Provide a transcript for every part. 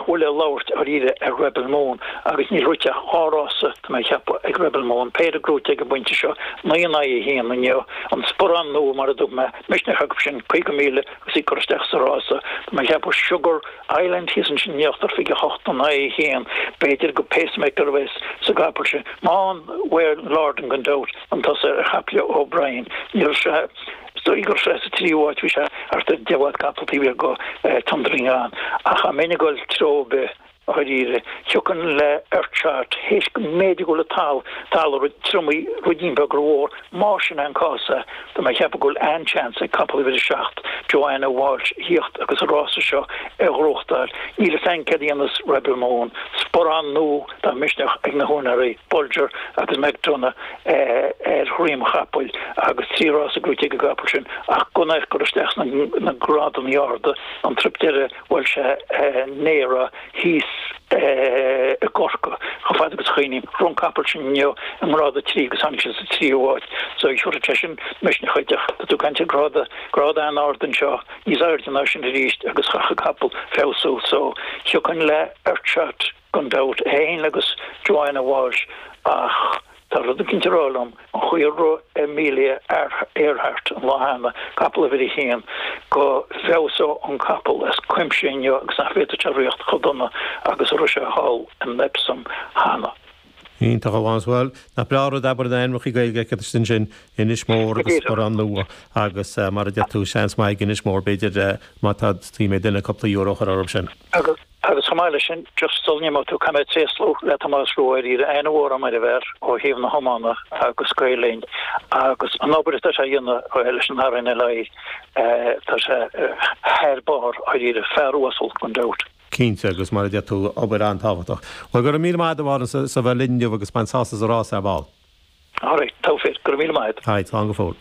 Bhuel le labhairt dháiríre ar Rebel Moon agus níl rite ach dhá rása atá mé a cheapadh ag Rebel Moon, péire gnóite ag an bpointe seo, naoi in aghaidh a haon inniu, an Sparán Nua mar a dúirt mé, misneach acu sin, caoga míle agus í curtha isteach sa rása, tá mé a cheapadh Sugar Island thíos ansin in íochtar, fiche a hocht in aghaidh a haon, b'fhéidir gur pacemaker a bheas sa gcapall sin, Wayne Lordan, gan dabht, chun tosaigh ar chapall O'Brien, níl sé. So gur sa tríú háit a bhí sé thart ar 10 bhfad capall taobh thiar de Thundering On, ach dá mbeinn ag dul treo ar bith, dháiríre, thiocfainn le Earth Shot, théis go mb'fhéidir go bhfuil an talamh, talamh triomaithe, ruidín beag rómhór. Más sin é an cás, sea, tá mé ag ceapadh go bhfuil an-chance ag capall uimhir 7, Johanna Walsh, thíocht agus an rása seo a ghnóthachtáil. Níl fhios a'inn céard a dhéanfas Rebel Moon. Sparán Nua, tá misneach ag na húinéirí, Bolger agus McDonagh, ar dhroim chapaill agus trí rása gnóite ag an gcapall sin ach go n-éirigh gur isteach sna grádannaí arda an truip deireadh bhuail sé néara thíos i gCorcaigh chomh fada agus a chuimhním rith an capall sin inniu i ngrád a trí agus tháinig sé sa tríú háit so thiúrfadh sé sin misneach dhuit ach tá tú ag caint ar gráda grád an-ard anseo níos airde ná sin arís agus chaithfeadh capall feabhsú so thiocfainn le Earth Shot Gan dabht, é fhéin agus Johanna Walsh ach tá rud éicint a rá liom, an chaoi ar rith Amelia Earhart an lá cheana, capall uimhir a haon, go bhfeabhsódh an capall as cuimse inniu agus nach bhféadfadh sé ritheacht chomh dona agus a rith sé thall in Epsom cheana. Iontach a Mhánais, bhuel, nach breá an rud abair na ainmneacha Gaeilge agat is ansin Inis Mór agus Sparán Nua agus mar a deir tú seans maith ag Inis Mór b'fhéidir má theastaíonn ó dhuine cúpla euro a chur orthu sin. Agus chomh maith leis sin, just sul a n-imeoidh tú, caithfidh mé tréaslú le Tomás Rua dháiríre, an-mhór a'm ar an bhfear ó thaobh na hiomána agus Gael Linn agus an obair atá sé a dhéanamh leis an RNLI, tá sé thar barr, dháiríre. Fear uasal, gan dabht. Cinnte, agus mar a deir tú, obair an-tábhachtach. Bhuel, go raibh míle maith agat a Mhánais as a bheith linn inniu agus bain sásamh as an rás ar ball. Alright, togha fir. Go raibh míle maith agat. Aye, slán go fóill.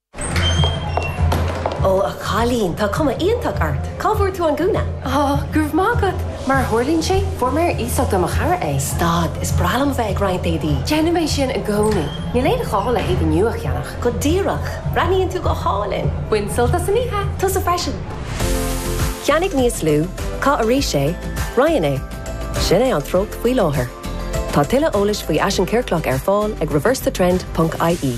Ó, a chailín, tá cuma iontach ort. Cá bhfuair tú an gúna? Ó, go raibh maith agat. Mar a tharlaíonn sé, fuair mé ar iasacht ó mo chara é. Stad, is breá liom a bheith ag roinnt éadaí. Déanaim é sin i gcónaí. Níl aon ghá le héadaí nua a cheannach. Go díreach. Breathnaíonn tú go hálainn. Bain sult as an oíche. Tusa freisin. Ceannaigh níos lú, caith arís é, roinn é. Sin é an treocht faoi láthair. Tá tuilleadh eolais faoi fhaisean ciorclach ar fáil ag reversethetrend.ie.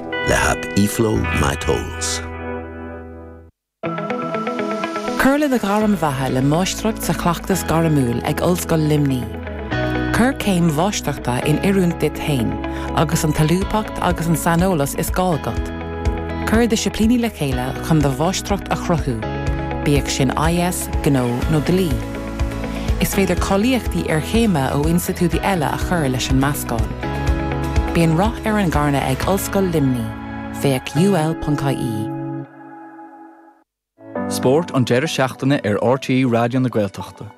le hap eFlow My Tolls. Cuir le do ghairm bheatha le Máistreacht sa Chleachtas Gairmiúil ag Ollscoil Luimní. Cuir céim Mháistreachta in oiriúint duit féin agus an tsolúbthacht agus an saineolas is gá agat. Cuir disciplíní le chéile chun do Mháistreacht a chruthú, bíodh sin IS, gnó nó dlí. Is féidir cáilíochtaí iarchéime ó institiúidí eile a chur leis an meascán. Bíonn rath ar an gcarnadh ag Ollscoil Luimní, féach ul.ie. Spórt an deireadh seachtaine ar RTÉ Raidió na Gaeltachta.